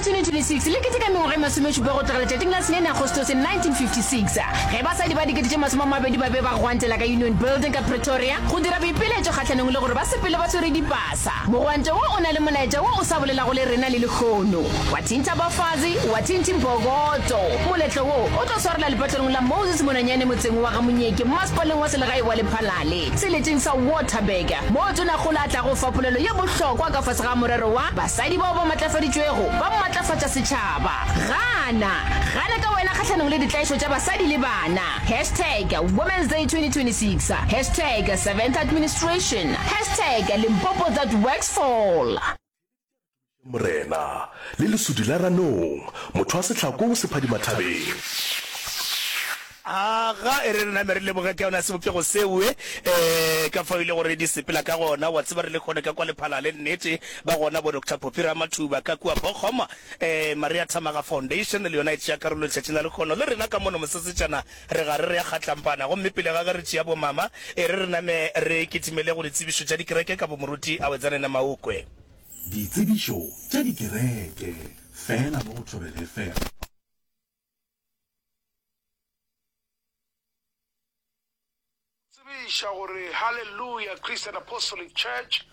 2026 le keteka mengwaga e masomešupa go tloga letšatšing la sene Agostose 1956 ge basadi ba dikete tše masome a mabedi ba be ba gwantela ka Union Building ka Pretoria go dira boipiletšo kgahlanong le gore ba sepele ba swere dipasa. Mogwanto wo o na le molaetša wo o sa bolelago le rena le lehono. Wa thintha bafazi, wa thinthi mbokoto. Moletlo wo o tlo swarela lepatlelong la Moses Monanyane motseng wa ga Monyeke, Mmasepaleng wa Selegae wa Lephalale. Seleteng sa Waterberger, moo Tonagola a tlago fa polelo ye bohlokwa ka fase ga morero wa Basadi bao ba Matlafaditšwego ba Matlafatša Setšhaba. Gana! Gana ka wena kgahlanong le ditlaišo tša basadi le bana! Hashtag Women's Day 2026 Hashtag SeventhAdministration Hashtag Limpopo That Works Fall. Morena le lesudi la ranong, motho wa setlhako o sephadimathabeng. Aga e re re name re leboge ka yona sebopego seo, e ka fao e le gore di sepela ka gona. Wa tseba, re le kgone ka kwa Lephalale, nnete, ba gona bo Doctor Poppy Ramathuba ka kua Bochum, Maria Thamaga Foundation le yona e tšea karolo letšatšing la lekgono le rena ka mono mosesetšana. Re gare re ya Kgatlampana, gomme pele ga ge re tšea bomama, e re re name re kitimele go ditsebišo tša dikereke ka bomoruti Awetsane Namaokwe. Ditsebišo tša dikereke fela mo go Thobela FM. Tsebiša gore Hallelujah Christian Apostolic Church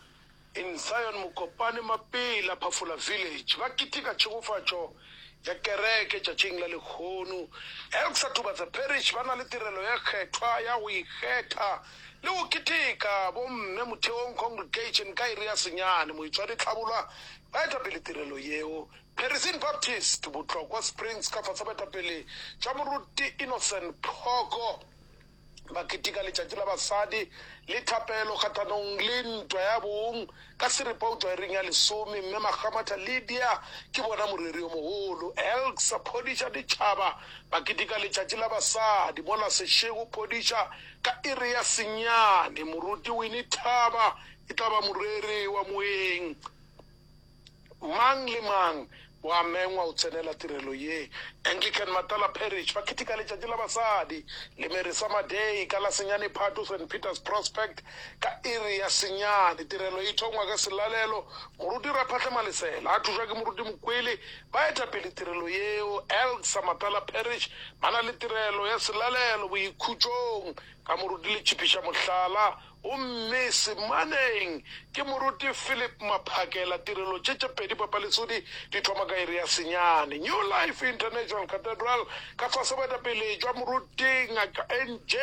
in Zion Mokopane Mapela Phafola Village ba keteka tšhegofatšo ya kereke tšatšing la lehono. Elk sa Tubatsa Parish ba na le tirelo ye kgethwa ya go ikgetha le go keteka bomme motheong congregation ka iri ya senyane. Moitshwari Tlhabolwa ba eta pele tirelo yeo. Perising Baptist Botlokwa Springs ka fase baetapele tša Moruti Innocent Phoko. ba keteka letšatši la basadi le thapelo kgahlanong le ntwa ya bong ka seripao tšwaereng ya lesome. Mme Makgamatha Lydia ke bona moreri yo mogolo. Elk sa phodiša ditšhaba ba keteka letšatši la basadi mola sešego phodiša ka iri ya senyane. Moruti Winnie Thaba e tla ba moreri wa moeng. Mang le mang o a mengwa o tsenela tirelo ye. Anglican Matala Parish ba ketika letšatši la basadi le Mary Summer Day ka la senyane Phato Saint Peter's Prospect ka iri ya senyane. Tirelo e thongwa ka selalelo, moruti Raphahle Malesela a thušwa ke moruti Mokwele. Baetapele tirelo yeo Elk sa Matala Parish ba na le tirelo ya selalelo boikhutšong ka moruti le tšhipiša mohlala Gomme semaneng ke moruti Philip Maphakela, tirelo tše tše pedi papaletsodi di thoma ka iri ya senyane. New Life International Cathedral, ka fase boetapele jwa moruti Ngaka NJ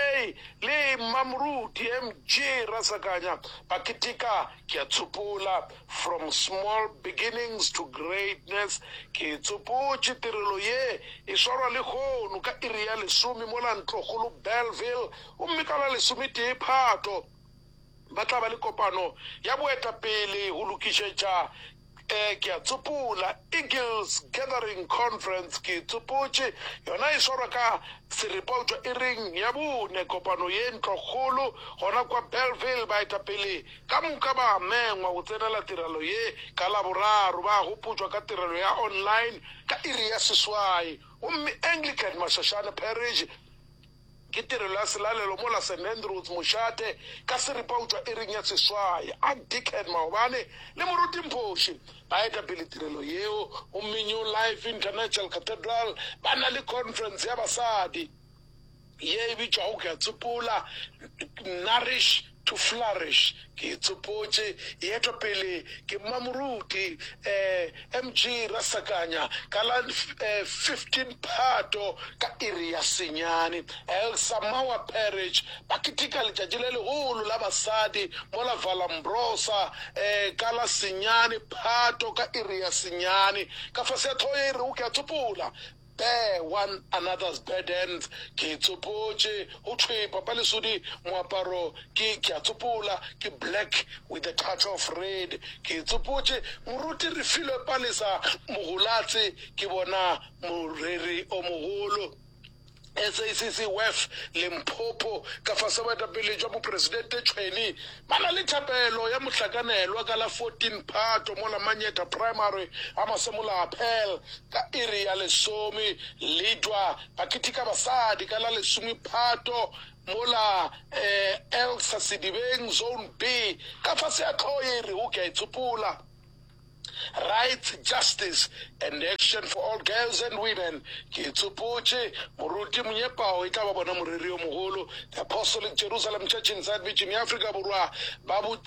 le Mmamoruti MG Rasakanya ba ketika Ke a tsopola, From Small Beginnings to Greatness. Ke tsopotše tirelo ye e swarwa lehono ka iri ya lesome mola Ntlokgolo Bellville, Gomme ka la lesometee Phato ba tla ba le kopano ya boetapele go lokišetša, ee, ke a tsopola, Eagles Gathering Conference, ke tsopotše, yona e swarwa ka Seripautswa iring ya bone, kopano ye ntlokgolo gona kwa Bellville. Baetapele ka moka ba a mengwa go tsenela tirelo ye ka Laboraro, ba a gopotšwa ka tirelo ya online ka iri ya seswai. Gomme Anglican Masashane Parish Ke tirelo ya selalelo mo la St Andrews mošate ka seripa o tšwa iring ya seswai. Ark Dickhead Maobane le Moruti Mphoshi ba etapele tirelo yeo gomme New Life International Cathedral ba na le khonferense ya basadi ye e bitšwago Ke a Tsopola, Nourish, To flourish, ke itsopotše, e etwa pele ke Mmamoruti eh, MG Rasakanya, ka la eh, 15 Phato ka iri ya senyane. Elsa Mawa Parrish, ba keteka letšatši le legolo la basadi mola Vallombrosa eh, ka la senyane Phato ka iri ya senyane. Ka fase ya tlhogo ye e rego ke a tsopola, There one another's burdens Ke e tsopotše, go thwe papa lesodi Moaparo ke, ke a tsopola, ke black with a touch of red Ke e tsopotše, moruti Refilwe Palesa Mogolatse ke bona moreri o mogolo SACC Wef Limpopo Ka fase boetapele jwa bopresidente Tshweni Ba na le thapelo ya mohlakanelwa ka la 14 Phato mo la Manyeta Primary a Masemolaapel ka iri ya lesome. Ledwa ba ketika basadi ka la lesome Phato mo la Elsa Sedibeng Zone B ka fase ya tlhoo ye e rego Ke a e tsopola. Rights, Justice and Action for All Girls and Women, Ke tsopotše, moruti monyepao e tla ba bona moreri yo mogolo, The Apostolic Jerusalem Church in South Beach in ya Afrika Borwa, ba bo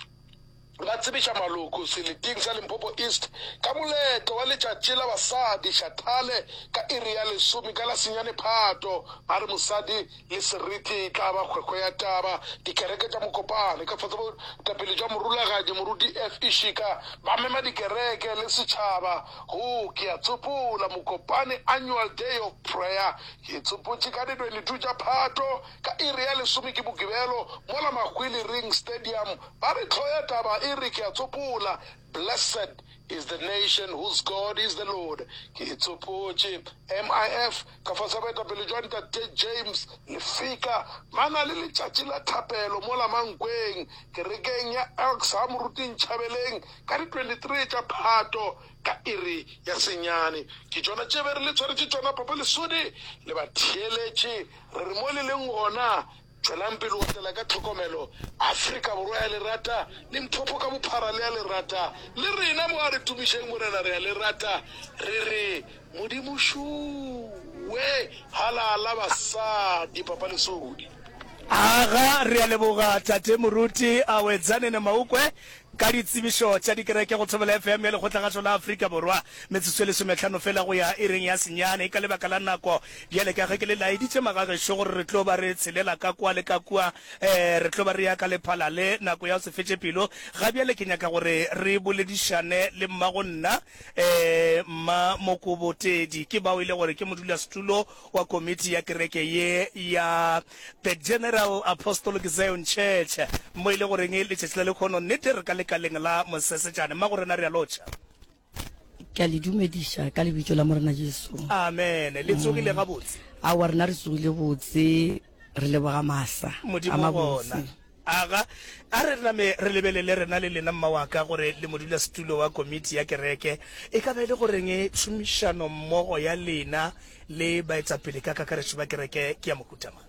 ba tsebiša maloko seleting sa Limpopo East ka moletlo wa letšatši la basadi, Shathale, ka iri ya lesome ka la senyane Phato, ba re mosadi le seriti e tla ba kgwekgwe ya taba. Dikereke tša mokopano ka fase botapele jwa Morulagadi Moruti F. Ishika ba mema dikereke le setšhaba go Ke a tsopola Mokopane Annual Day of Prayer ye tsopotše ka di 22 tša Phato ka iri ya lesome ke Bokibelo mola Mahwili Ring Stadium ba re tlhoya taba e re Ke a tsopola Blessed is the nation whose God is the Lord. Ke e tsopotše. MIF, ka fase ga boetapele jwa Ntate James Lefika, ba na le letšatši la thapelo mola Mankweng, kerekeng ya Elks ha Moruti Nchabeleng ka di 23 tša Phato ka iri ya senyane. Ke tšona tše be re le tshwaretše tšona, Papa Lesodi, le batheeletše, re re mo le leng gona. Tšwelang pele go otlela ka tlhokomelo. Afrika Borwa ya le rata, Limpopo ka bophara le a le rata. Le rena mo a re tumišeng Morena re a le rata. Re re, Modimo šuuwe! Halala basadi, Papa Lesodi. Aga, re a leboga Tate Moruti Awedzanene Maukwe Ka ditsebišo tša dikereke go Thobela FM ya Lekgotlagašo la Afrika Borwa, metsotso e lesometlhano fela go ya ireng ya senyane. Ka lebaka la nako, bjale ka ge ke le laeditše magagešo gore re tlo ba re tshelela ka kwa le ka kua, ee, re tlo ba re ya ka lephala le, nako ya go se fetše pelo, ga bjale ke nyaka gore re boledišane le mmagonna, ee, Mma Mokobotedi. Ke bao e le gore ke modulasetulo wa komiti ya kereke ye ya The General Apostolic Zion Church, mo e le goreng letšatši la lekhono nnete re ka lekaleng la Mosesetšane. Mmago rena re a lotšha. Ke a le dumediša ka Lebitso la Morena Jesu. Amen. Le tsogile gabotse? Aowa, rena re tsogile botse. Re leboga maasa a Modimo gona. mabotse. Aga, a re name re lebelele, rena le lena, mma wa ka, gore le modulasetulo wa komiti ya kereke. E ka ba e le goreng tšhomišanommogo ya lena le baetapele ka kakaretšo ba kereke ke ya mohuta mang?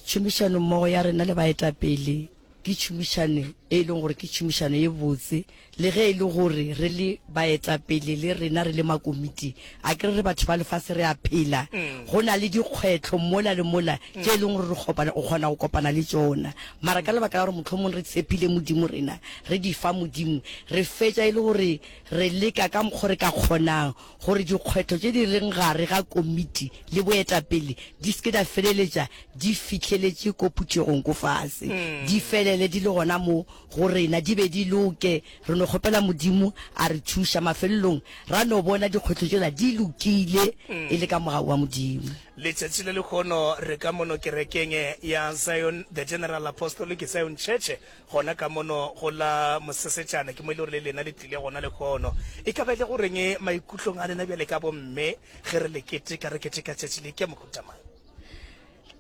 Tšhomišanommogo ya rena le baetapele Ke tšhomišano e e leng gore ke tšhomišano e botse, le ge e le gore re le baetapele le rena re le makomiti a ke re re batho ba lefase re a phela, go na le dikgwetlho mola le mola tše e leng gore re kgopana o kgona go kopana le tšona. Mara ka lebaka la gore mohlomong re tshepile Modimo rena re di fa Modimo, re fetša e le gore re leka ka mokgo re ka kgonang gore dikgwetlho tše di leng gare ga komiti le boetapele di se ke di feleletša di fihleletše ko phuthegong ko fase, di felele di le gona mo go rena, di be di loke. Re no kgopela Modimo a re thuša, mafelelong ra no bona dikgwetlho tšela di lokile e le ka mogau wa Modimo. Letšatši le lehono re ka mono kerekeng ya Zion The General Apostolic Zion Church gona ka mono go la mosesetšana, ke mo e le gore le lena le tlile gona lehono. E ka ba e le go reng maikutlong a lena bjale ka bomme ge re le keteka, re keteka tšatši le ke mohuta mang?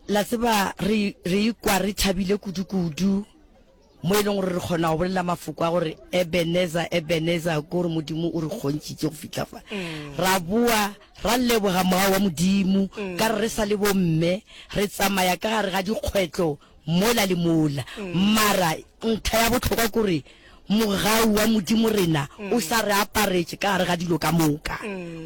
La tseba re, re ikwa re thabile kudu-kudu, mo e leng gore re kgona go bolela mafoko a gore Ebenezer, Ebenezer, ke gore Modimo o re kgontšitše go fihla fa. Mm. Ra boa ra leboga Moya wa Modimo, mm. ka re re sa le bomme re tsamaya ka gare ga dikgwetlo mola le mola. Mara ntlha ya bohlokwa ke gore mogau wa Modimo rena o sa re aparetše ka gare ga dilo ka moka.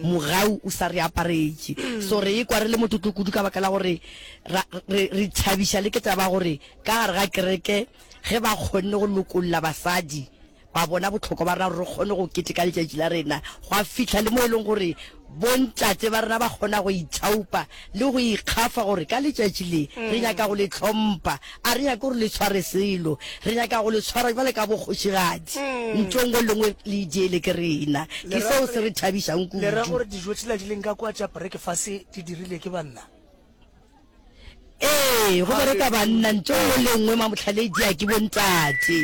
Mogau o sa re aparetše. So re ikwa re le motlotlo kudu ka baka la gore ra, re, re thabiša le ke taba ya gore ka gare ga kereke ge ba kgonne go lokolla basadi, ba bona bohlokwa ba rena gore re kgone go keteka letšatši la rena, gwa fihla le mo e leng gore bontate ba rena ba kgona go ithaopa le go ikgafa gore ka letšatši le re nyaka go le tlhompha, a re nyake gore le tshware selo, re nyaka go le tshwara jwale ka bokgošigadi, ntho e nngwe le nngwe le e diele ke rena. Ke seo se re thabišang kudu. Le ra gore dijo tšela di leng ka kwa tša brekefase di dirile ke banna? Ee, go bereka banna ntho nngwe le nngwe mamotlhaledia ke bontate.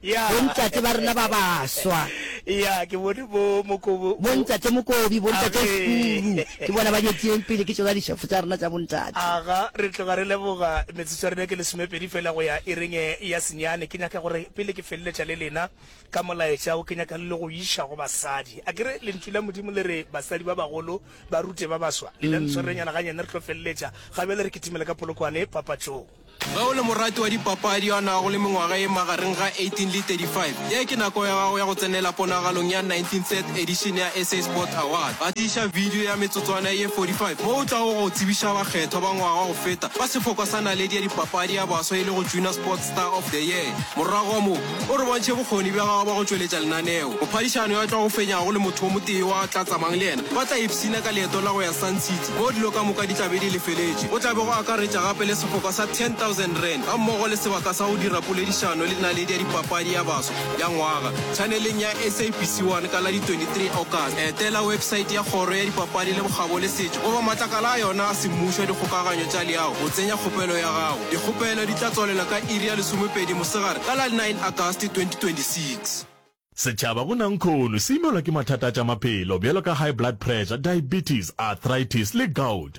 Yeah. Bontate ba rena ba baswa. ya ke bone bo mokobo Bontate Mokobi, bontate Amen. Furu, ke bona ba nyetsileng pele ke tsona dišefo tsa rena tsa bontate. aga re tloga re leboga metsotso ya rena ke lesomepedi fela go ya e renge ya senyane ke nyaka gore pele ke feleletša le lena ka molaetša o ke nyaka le le go iša go basadi a kere lentšu la modimo le re basadi ba bagolo Barute ba baswa, lena ntshwarenyana ganyane re tlo feleletša gabjale re kitimela ka Polokwane papatšong. Ge o le morati wa dipapadi yo a nago le mengwaga e magareng ga 18 le 35, ye ke nako ya gago ya go tsenela ponagalong ya 19th edition ya SA Sports Awards. Ba tiiša bidio ya metsotswana ye 45 mo o tlago go tsebiša bakgethwa ba ngwaga go feta ba sefokwa sa naledi ya dipapadi ya baswa e lego Junior Sports Star of the Year. Morago ga moo, o re bontšhe bokgoni bja gagwe bja go tšweletša lenaneo. Mophadišano yo a tlago fenyago le motho yo motee yo a tla tsamang le yena ba tla ipshina ka leeto la go ya Sun City moo dilo ka moka di tla be di lefeletšwe. Go tla be go akaretša gape le sefoka sa R10,000 gammogo le sebaka sa go dira poledišano le naledi ya dipapadi ya baswa. ya ngwaga tšhaneleng ya SABC 1 ka la di 23 August. Etela websaete ya Kgoro ya Dipapadi le Bokgabo le Setšo goba matlakala a yona a semmušo a dikgokaganyo tša leago go tsenya kgopelo ya gago. Dikgopelo di tla tswalela ka iri ya lesomepedi mosegare ka la 9 August 2026. Setšhaba go Nankhono se imelwa ke mathata a tša maphelo bjalo ka high blood pressure, diabetes, arthritis le gout.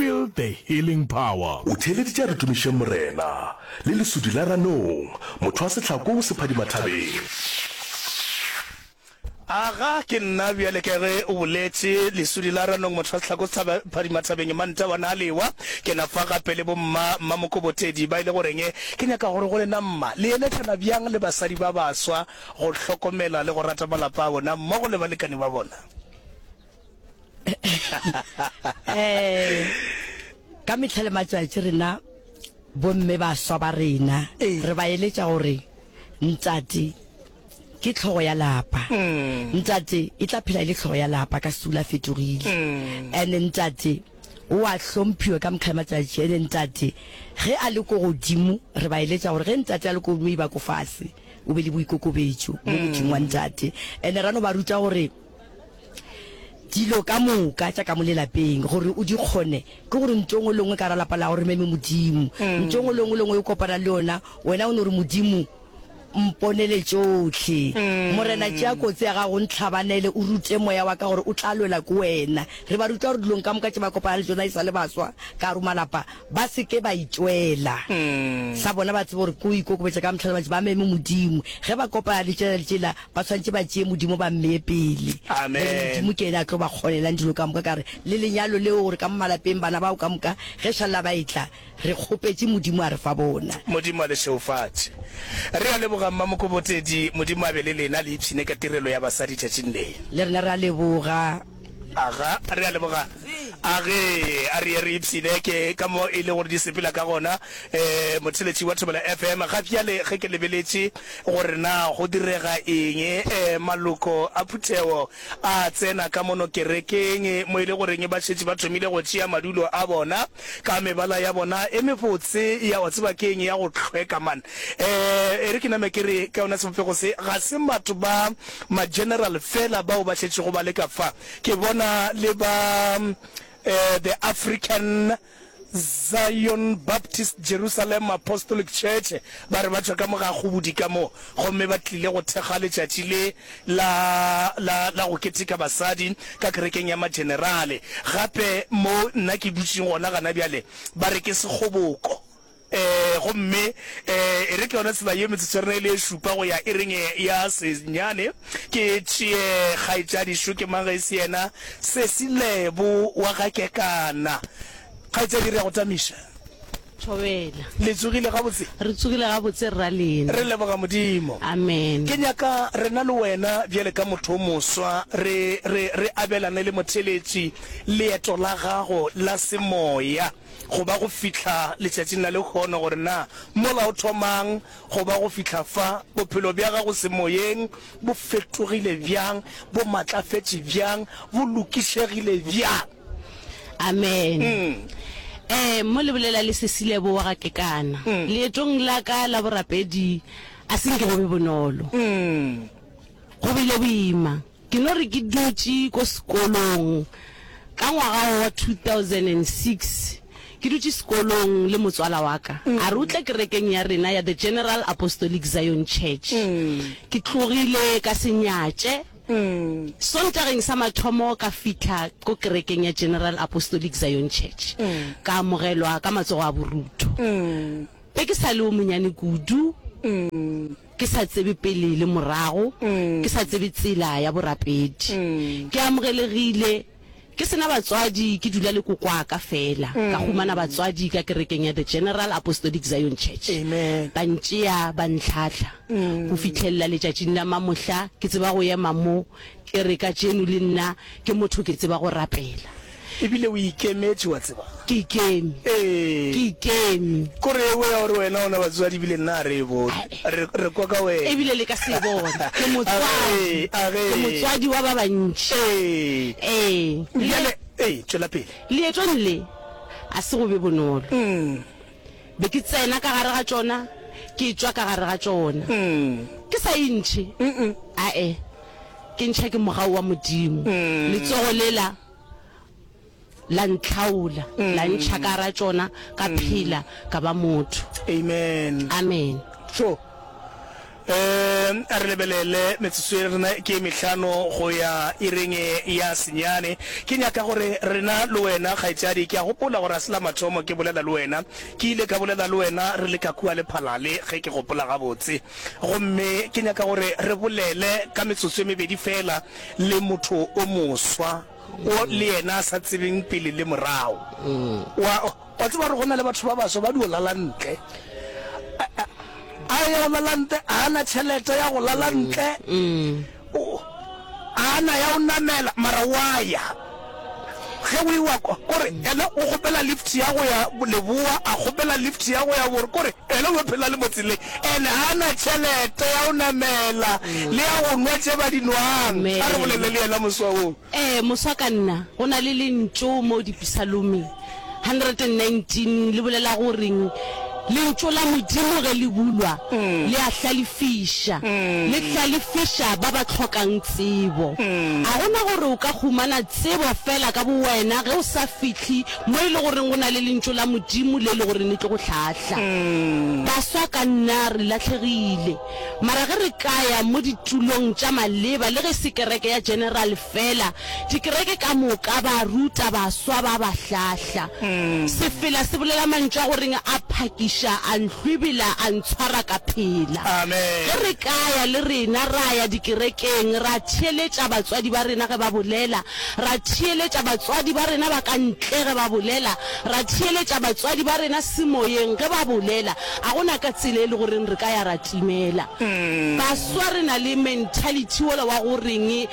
Feel the healing power. O theeleditše a re tumišeng Morena, le lesudi la ranong, motho wa sehlako o sephadima thabeng. Aga, ke nna bjale ka ge o boletše, lesudi la ranong, motho wa sehlako se phadima thabeng. Manta wa na lewa, ke na fa gape le bomma, Mma Mokobotedi, ba e le goreng ke nyaka gore go lena mma, le eletšana bjang le basadi ba baswa go hlokomela le go rata malapa a bona mmogo le balekane ba bona. eh ka mehla le matšatši rena bomme ba swa ba rena eh. re ba eletša gore ntate ke tlhogo ya lapa mm. ntate e tla phela e le tlhogo ya lapa ka sula fetogile mm. and ntate o a hlomphiwe ka mokgale matsatši ene ntate ge a le ko godimo re ba eletša gore ge ntate a le ko godimo e ba ko fase o be le boikokobetso mo mm. godimo wa ntate ene rano ba ruta gore dilo ka moka tša ka mo lelapeng gore o di kgone ke gore ntho ngwe lengwe ka ra lapa la gore meme modimo mm. ntho ngwe lengwe lengwe o kopana le yona wena o ne gore modimo mponele tšotlhe mm. morena tšea kotsi ya gago ntlhabanele o rute moya wa ka gore o tla lwela ko wena re ba ruta gore dilong ka moka tše ba kopana le tsona e sa le baswa ka romalapa Ba se ke ba itšwela sa bona, ba tsebe gore ke go ikokobetša ka mehla le matšatši, ba meme Modimo. Ge ba kopana letše le letše la, ba swanetše ba tšee Modimo ba mmee pele. Amen. Modimo ke yena a tlo ba kgonelang dilo ka moka, ka re le lenyalo leo, gore ka mo malapeng bana bao ka moka ge šalla ba etla, re kgopetše Modimo a re fa bona. Modimo a le šeufatše. Re a leboga Mma Mokobotedi, Modimo a be le lena, le ipshine ka tirelo ya basadi tšatšing le. Le rena re a leboga. Aga, a re a leboga. Age, a re ye re ipshine. Ke ka mo e le gore di sepela ka gona. E, motheletši wa Thobela FM. Ga bjale ge ke lebeletše gore na go direga eng, e, maloko a phuthego a tsena ka mono kerekeng, mo e le goreng ba šetše ba thomile go tšea madulo a bona, ka mebala ya bona e mebotse ya, wa tseba ke eng, ya go hlweka, man. E, e re ke name ke re, ka yona sebopego se, ga se batho ba ma-general fela bao ba šetšego ba le ka fa. Ke bona le ba eh, the African Zion Baptist Jerusalem Apostolic Church ba re ba tšwa ka mo ga kgobodi ka mo, gomme ba tlile go thekga letšatši le la, la, la go keteka basadi ka kerekeng ya ma-generale. Gape mo nna ke dutšeng gona gana bjale, ba re ke sekgoboko. Ee, gomme ee, e re ke yona tsela ye metsotsorena e le e šupa go ya e reng ya senyane. Ke tšee kgaetšadi šo, ke mang ge e se yena sesi Lebo wa ga Kekana. Kgaetšadi, re ya go tamiša. Thobela. Le tsogile gabotse? Re tsogile gabotse, Rra Lena. Re leboga Modimo. Amen. Ke nyaka rena le wena bjale ka motho o moswa re, re, re abelane le motheletši leeto la gago la semoya. go ba go fihla letšatšing la lehono, gore na mola o thomang go ba go fihla fa, bophelo bja gago semoyeng bo fetogile bjang, bo matlafetše bjang, bo lokišegile bjang. Amen. Ee, mo le bolela le Cecile bowa ga kekana. Leetong la ka la borapedi a se nke go be bonolo. Go bile boima. Ke no re ke dutše ko sekolong ka ngwaga wo wa 2006, ke dutše sekolong le motswala wa ka, a re o tle kerekeng ya rena ya The General Apostolic Zion Church. Ke tlogile ka se nyatše. Sontageng sa mathomo ka fihla ko kerekeng ya General Apostolic Zion Church, ka amogelwa ka matsogo a borutho. Be ke sa le wo monyane kudu. Ke sa tsebe pele le morago, ke sa tsebe tsela ya borapedi. Ke amogelegile, ke se na batswadi, ke dula le kokwaka fela. Ka humana batswadi ka kerekeng ya The General Apostolic Zion Church. Amen. Ba ntšea, ba ntlhahla. Go fihlelela letšatšing la mamohla, ke tseba go ema mo, ke re, Kajeno le nna ke motho, ke tseba go rapela. E bile o ikemetše, wa tseba. Ke ikeme. Ee. Ke ikeme. Ko re e-boe ya gore wena o na batswadi ebile nna a re e bone. Re, re kwa ka wena. E bile le ka se e bone. Ke motswadi. Age, age. Ke motswadi wa ba bantši. Ee. Ee. Bjale, ee, tšwela pele. Leetong le, a se go be bonolo. Umm. Be ke tsena ka gare ga tšona, ke tšwa ka gare ga tšona. Ke sa e ntšhe, a-e, ke ntšha ke mogau wa Modimo. Letsogo lela la ntlhaola, la ntšha ka gare ga tšona, ka phela, ka ba motho. Amen. Amen. Tšo. A re lebelele metsotso ye rena ke ye mehlano go ya ireng ya senyane. Ke nyaka gore rena le wena, kgaetšadi, ke a gopola gore ga se la mathomo ke bolela le wena. Ke ile ka bolela le wena re le ka kua lephalale, ge ke gopola gabotse. Gomme ke nyaka gore re bolele ka metsotso e mebedi feela le motho o moswa, wo le yena a sa tsebeng pele le morago. Wa. Wa tseba gore go na le batho ba baswa ba dio lala ntle. A ya o lala ntle, a na tšhelete ya go lala mm, ntle. Mm. A na ya o namela, mara wa ya. Ge o iwa kwa, kore ena o kgopela lift ya go ya Leboa, a kgopela lift ya go ya Bore, kore ena o phela le motsele. Ene a na tšhelete ya o namela mm. le ya go nwa tše ba di nwang. A re bolele le yena moswawong. Ee, moswa ka nna. Go na le lentšu mo Dipisalome 119 le bolela gore lentšu la Modimo ge le bulwa le a hlalefiša, le hlalefiša ba ba hlokang tsebo. A go na gore o ka humana tsebo fela ka bowena ge o sa fihli mo e le goreng go na le lentšu la Modimo le e le gore le tlo go hlahla? Baswa ka nna re lahlhegile. Mara ge re ka ya mo ditulong tša maleba, le ge e se kereke ya General feela, dikereke ka moka ba ruta baswa ba ba hlahla. Sefela se bolela mantšu a go reng a phakiša, a nhlwibila, a ntshwara ka phela. Ge re ka ya le rena, ra ya dikerekeng, ra theeletša batswadi ba rena ge ba bolela, ra theeletša batswadi ba rena ba ka ntle ge ba bolela, ra theeletša batswadi ba rena semoyeng ge ba bolela, Ga go na ka tsela e lego reng re ka ya ra timela baswa re na le mentality wola wa go reng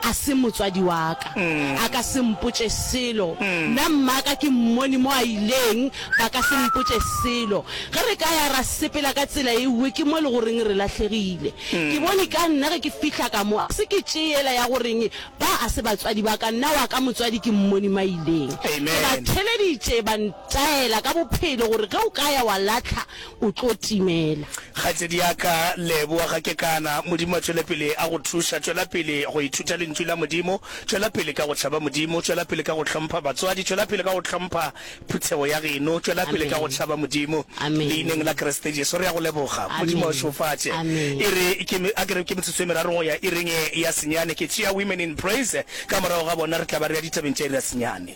a se motswadi wa ka, a ka se mpotše selo, nna mmaka ke mmone mo a ileng, ba ka se mpotše selo. Ge re ka ya ra sepela ka tsela e nngwe, ke mo e lego reng re lahlegile. Ke bone ka nna ge ke fihla ka mo, a se ke tše yela ya go reng ba a se batswadi ba ka, nna wa ka motswadi ke mmone mo a ileng. Ke ba theleditše ba. Taela ka bophelo gore ge o ka ya wa lahla o tlo timela. Kgaitsedi ya ka, leboa ga ke kana. Modimo a tšwele pele a go thuša. Tšwela pele go ithuta Lentšu la Modimo. Tšwela pele ka go tšhaba Modimo. Tšwela pele ka go hlompha batswadi. Tšwela pele ka go hlompha phuthego ya geno. Tšwela pele ka go Amen. tšhaba Modimo. Amen. Leineng la Kriste Jesu, re ya go leboga. Modimo a Amen. šofatše. Amen. E re ke me- a ke re ke metsotso e meraro go ya ireng e ya senyane. Ke tšea Women in Praise, ka morago ga bona re tla ba re ya ditabeng tša iri ya senyane.